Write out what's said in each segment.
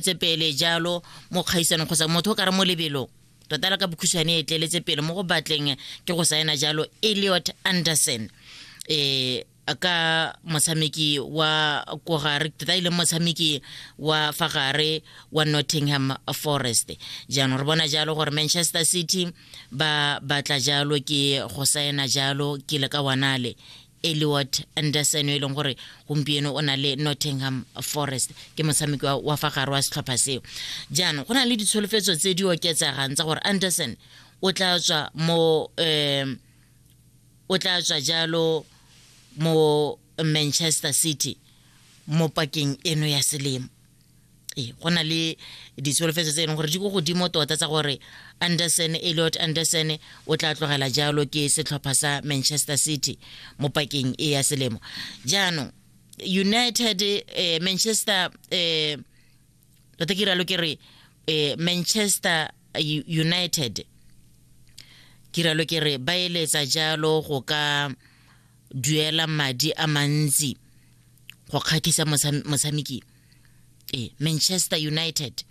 tse pele jalo mo kgaisanong kgotsa motho o ka re mo lebelong tota la ka bokhutshwane e tleletse pele mo go batleng ke go saena jalo eliot anderson um ka motshameki wa ko gare tota e leng motshameki wa fa gare wa nottingham forest jaanong re bona jalo gore manchester city ba batla jalo ke go saena jalo ke le ka wanale eliot anderson e leng gore gompieno o na le nottingham forest ke motshameki wa fa gare wa setlhopha seo jaanong go na le ditsholofetso tse di oketsegang tsa gore anderson o tla tswa mo um o tla tswa jalo mo manchester city mo pakeng eno ya selemo ee go na le ditsholofetso tse e leng gore di ko godimo tota tsa gore anderson eliot anderson o tla tlogela jalo ke setlhopha sa manchester city mo pakeng e ya selemo jaanong united eh, manchester eh, tota ke ralo ke re eh, manchester united ke ralo ke re ba eletsa jalo go ka duela madi a mantsi go kgatlhisa motshameki mosa e manchester united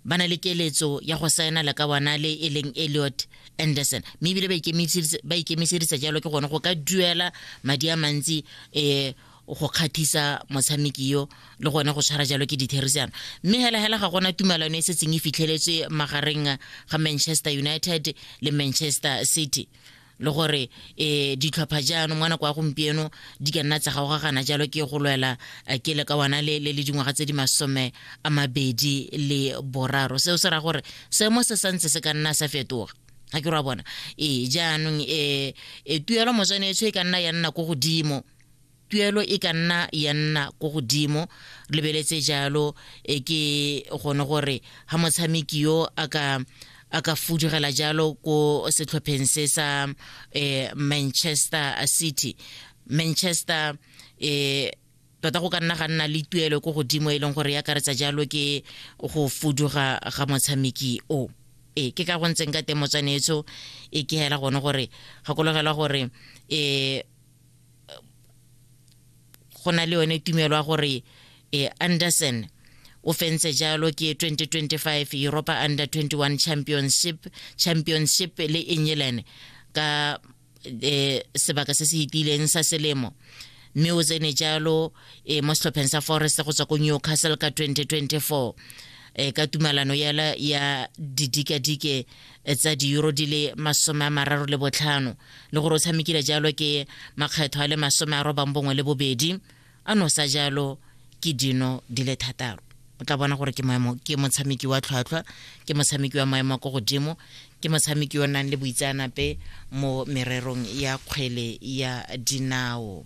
ba na le keletso ya go saena le ka bona le e leng eliot anderson mme ebile ba ikemisedisa jalo ke gone go ka duela madi a mantsi um go kgathisa motshameki yo le gone go tshwara jalo ke ditherisano mme hela hela ga gona tumalano e setseng e fitlheletswe magareng ga manchester united le manchester city le gore um ditlhopha jaanong ngwana kwa gompieno di ka nna tsa gaogagana jalo ke go lwela eh, ke le ka wana le le dingwaga tse di masome a mabedi le boraro seo se ra gore seemo se santse se ka nna sa fetoga ga ke ra bona ee jaanong um tuelo motswanetso e ka nna ya nna ko godimo tuelo e ka nna ya nna ko godimo lebeletse jalo e ke gone gore ga motshameki yo a ka a ka fudugela jalo ko setlhopheng se sa eh, manchester city manchester eh, tota go ka nna ga nna le tuelo ko godimo e leng gore ya karetsa jalo ke go fuduga ga motshameki o e ke ka go ntseng ka teng motswanetso e ke hela gone gore gakologelwa gore um go na le yone tumelo ya gore eh, anderson o fentse jalo ke 2025 europa under 21 championship championship le england ka eh, sebaka se se itileng sa selemo mme o tsene jalo eh, mo setlhopheng sa forest go tswa ko newcastle ka 2024 eh, ka tumalano yala ya didikadike e tsa diuro di le masome a mararo le botlhano le gore o tshamekile jalo ke makgetho a le masome a robang bongwe le bobedi a nosa jalo ke dino di le thataro o tla bona gore ke maemo ke motshameki wa tlhwatlhwa ke motshameki wa maemo a ko godimo ke motshameki o nang le boitseanape mo mererong ya kgwele ya dinao